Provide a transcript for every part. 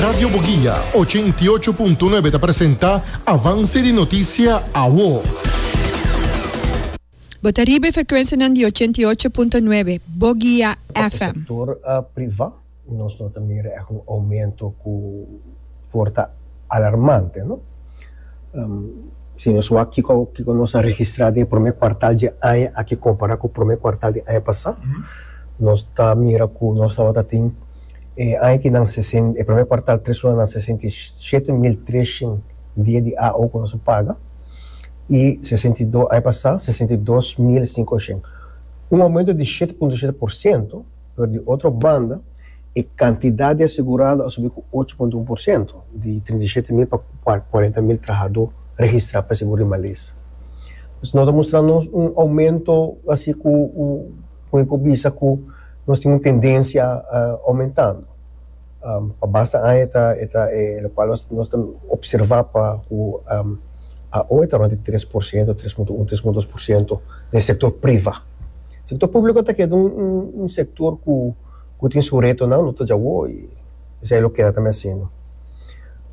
Radio Boguia ochenta i ocho punto nuebe ta presenta Avance di Noticia Awo. Bo ta riba e frecuencianan di ochenta i ocho punto nuebe Boguia FM. Sector priva nos no ta mira echt un aumento cu por ta alarmante, no? Si nos wak kico kico nos a registra den e prome cuartal dje aña aki compara cu prome cuartal di aña pasa, nos ta mira cu nos tabata tin. E añakinan e promé kuartal tres lunanan sesenta i shete mil treshen dia di AO ku nos a paga i sesenta i dos aña pasá sesenta i dos mil sinkoshen, un oumentu di shete punto shete por sentu, pero di otro banda e kantidat di asegurado a subi ku ocho punto un por sentu, di trinta i shete mil pa kuarenta mil trahadó registrá pa e segur di malesa. Nos ta mustra nos un oumentu basi ku, ku mi por bisa ku. Nos tin un tendencia aumentando. Pa basta aña ta e ta e locual nos nos ta observa pa cu aho e ta rond di tres por ciento, tres punto un, tres punto dos por ciento den sector priva. Sector publico ta keda un un un sector cu cu tin su retonan no ta dja awo y esei lo keda ta mi haciendo.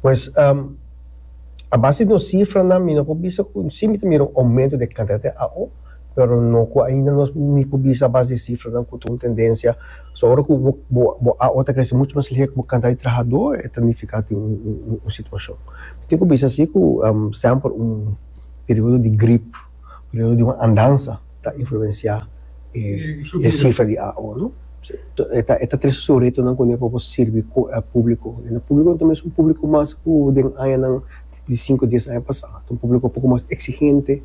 Pues a base di nos cifranan mi no por bisa cu si mi ta mira un aumento den cantidad di aho. pero no cu ainda nos ni por bisa a base di e cifranan cu ta un tendencia. So ora cu bo bo bo a ora ta crece mucho mas lihé cu bo cantidad di trahador e ta nifica tin un un un un situacion. Mi tin cu bisa si cu semper un periodo di grip, periodo di un andansa ta influencia e e cifra di AO no. Si to e ta e ta tres sureto nan cu no e por bo sirbi cu e publico. E publiconan ta mes un publico mas cu den añanan. di sinku a dies aña pasá, ta un públiko poko mas eksigente,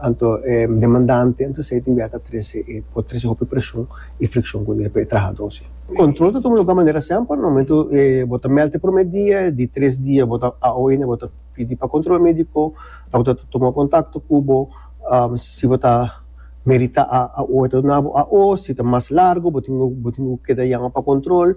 anto e demandante, anto esei ta bia ta trese e por trese hopi preshon i frikshon ku e trahadónan. Kontrol ta tuma lugá manera semper, na momentu bo ta mèlt e promé dia, di tres dia bo ta a oi ne bo ta pidi pa kontrol médiko, dòkter ta tuma kontakto ku bo, si bo ta meritá a oi ta duna bo a oi, si ta mas largu bo tin bo tin keda yama pa kontrol.